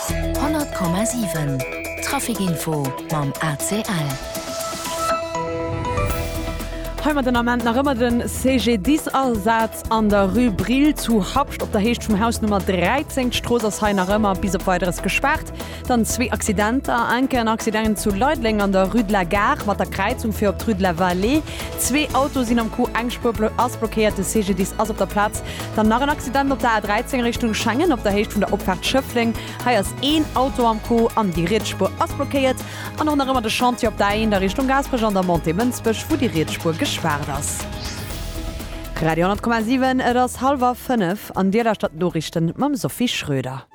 100,7 Trafic Info mam ACL. Heimat den Ament nach ëmmer den CGDIS Asaz an der Rue Brill zu Habscht op der Heescht vum Haus Nummer 13. D'Strooss ass hei nach ëmmer bis op Weideres gespaart. Dann zwee Accidenter, enke en Accident zu Leideleng an der Rue de la Gare mat der Kräizung fir op d'Rue de la Vallée. Zwee Autoe sinn am Coup, eng Spuer blo ass blockéiert, de CGDIS ass op der Plaz. Dann nach en Accident op der A13 Richtung Schengen op der Héicht vun der Opfaart Schëffleng. Hei ass een Auto am Coup an déi riets Spuer ass blockéiert. An och nach ëmmer de Chantier op der A1 a Richtung Gaasperech an der Montée Mënsbech, wou déi riets Spuer gespaart ass. Radio 10,7 Et ass hallwer fënnef an Dir lauschtert d'Noriichten mam Sophie Schröder.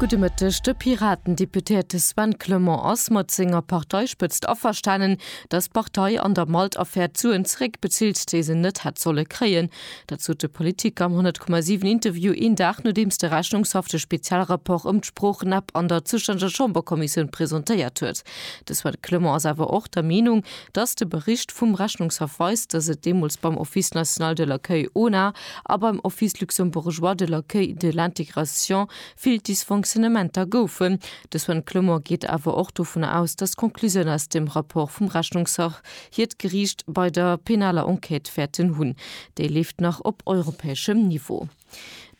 Gudde Mëtteg. De Piraten-Deputéierte Sven Clement ass mat senger Parteispëtzt averstanen, datt d'Partei an der Malt-Affär d'Suen zeréckbezilt, déi se net hätt solle kréien. Dat sot de Politiker am 100,7 Interview een Dag nodeems de Rechnungshaff de Spezialrapport ëm d'Sproochen-App an der zoustännege Chamberkommissioun presentéiert huet. De Sven Clement ass awer och der Meenung, datt de Bericht vum Rechnungshaff weist, datt et deemools beim Office national de l'accueil, ONA, a beim Office luxembourgeois de l'accueil de l'intégration vill Dysfonctionnementer goufen. De Sven Clement geet awer och dovun aus, datt d'Conclusioun aus dem Rapport vum Rechnungshaff, hir d'Geriicht bei der penaler Enquête wäerten hunn, déi leeft nach op europäeschem Niveau.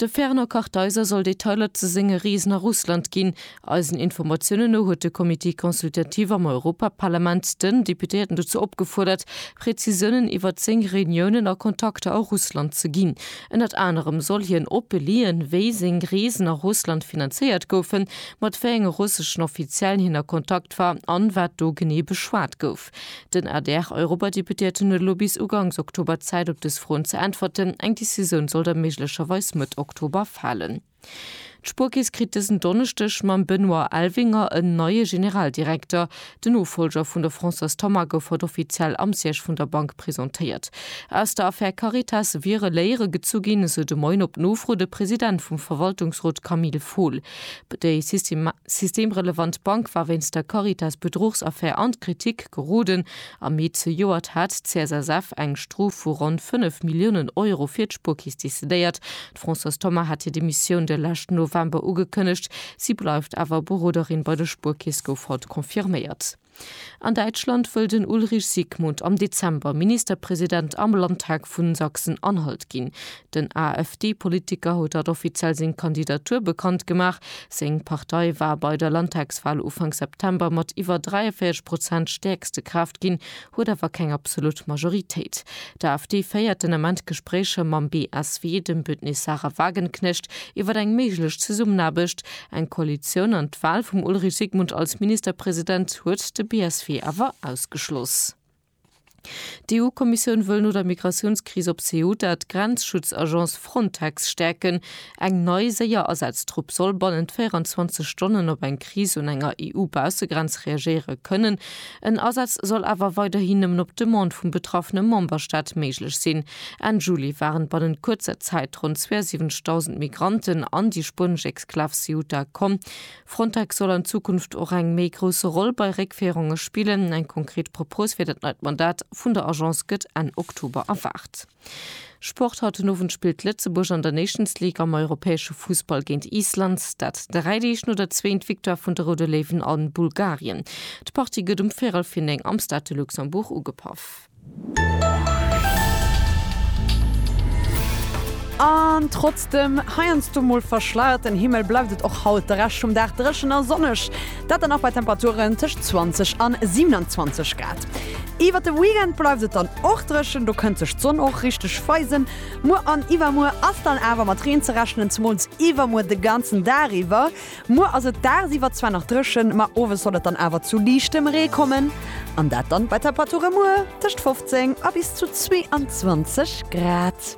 De Fernand Kartheiser soll Detailer ze senge Reesen a Russland ginn. Eisen Informatiounen no huet de Comité consultatif am Europaparlament den Deputéierten dozou opgefuerdert, Prezisiounen iwwer zéng Reuniounen a Kontakter a Russland ze ginn. Ënnert anerem soll hien opelien, wéi seng Reesen a Russland finanzéiert goufen, mat wéi enge russeschen Offiziellen hien a Kontakt war an wat do genee beschwat gouf. Den ADR-Europadeputéierten huet elo bis uganks Oktober Zäit op dës Froen ze äntwerten. Eng Decisioun soll da méiglecherweis Mëtt Oktober falen. D'Spuerkeess kritt dësen Donneschdeg mam Benoît Elvinger en neie Generaldirekter. Den Nofollger vun der Françoise Thoma gouf haut offiziell am Siège vun der Bank presentéiert. Aus der Affär Caritas wiere Léiere gezu ginn, esou de Moien op Nofro de President vum Verwaltungsrot Camille Fohl. Déi systemrelevant Bank war wéinst der Caritas-Bedruchsaffär an d'Kritik geroden. Am Mee zejoert hat d'CSSF eng Strof vu ronn 5 Milliounen Euro fir d'Spuerkeess decidéiert. D'Françoise Thoma hat hir Demissioun de leschten November ugekënnegt. Si bleift awer Beroderin bei der Spuerkeess, gouf haut confirméiert. An Däitschland wëll den Ulrich Siegmund am Dezember Ministerpresident am Landtag vu Sachsen-Anhalt ginn. Den AfD-Politiker huet haut offiziell seng Kandidatur bekannt gemaach. Seng Partei war bei der Landtagswal Ufank September mat iwwer 43 Prozent stäerkste Kraaft ginn, huet awer keng absolut Majoritéit. D'AfD féiert den Ament Gespréicher mam BSW, dem Bündnis Sarah Wagenknecht, iwwer eng méiglech Zesummenaarbecht. Eng Koalitioun an d'Wal vum Ulrich Sigmund als Ministerpresident huet de BSW awer ausgeschloss. D'EU-Kommissioun wëll no der Migratiounskris op Ceuta d'Grenzschutzagence Frontex stäerken. Eng nei, séier Asaztrupp soll bannent 24 Stonnen op eng Kris un enger EU-Baussegrenz reagéiere kënnen. En Asaz soll awer weiderhi nëmmen op Demande vum betraffene Memberstaat méiglech sinn. Enn Juli waren bannent kuerzer Zäit ronn 72.000 Migranten an déi spuenesch Exklav Ceuta komm. Frontex soll an Zukunft och eng méi grousse Roll bei Réckféierunge spillen. Eng konkret Propos fir dat neit Mandat vun der Agence gëtt Enn Oktober erwaart. Sport, Haut den Owend spillt Lëtzebuerg an der Nations League am europäesche Fussball géint Island. Dat dräi Deeg no der zweent Victoire vun de Roude Léiwen a Bulgarien. D'Partie gëtt um véierel vir 9 am Stade de Luxembourg ugepaff. An trotz dem heiansdo mol verschleierten Himmel bleift et och haut de Rescht vum Dag dréchen a sonneg. Dat dann och bei Temperaturen tëscht 20 an 27 Grad. Iwwer de Weekend bleift et dann och dréchen, do kënnt sech d'Sonn och richteg weisen. Muer an iwwermuer ass dann awer mat Reen ze rechnen, zemools iwwermuer de ganzen Dag iwwer. Muer ass et dagsiwwer zwar nach dréchen, ma owes soll et dann awer zu liichtem Ree kommen an dat dann bei Temperature muer tëscht 15 a bis zu 22 Grad.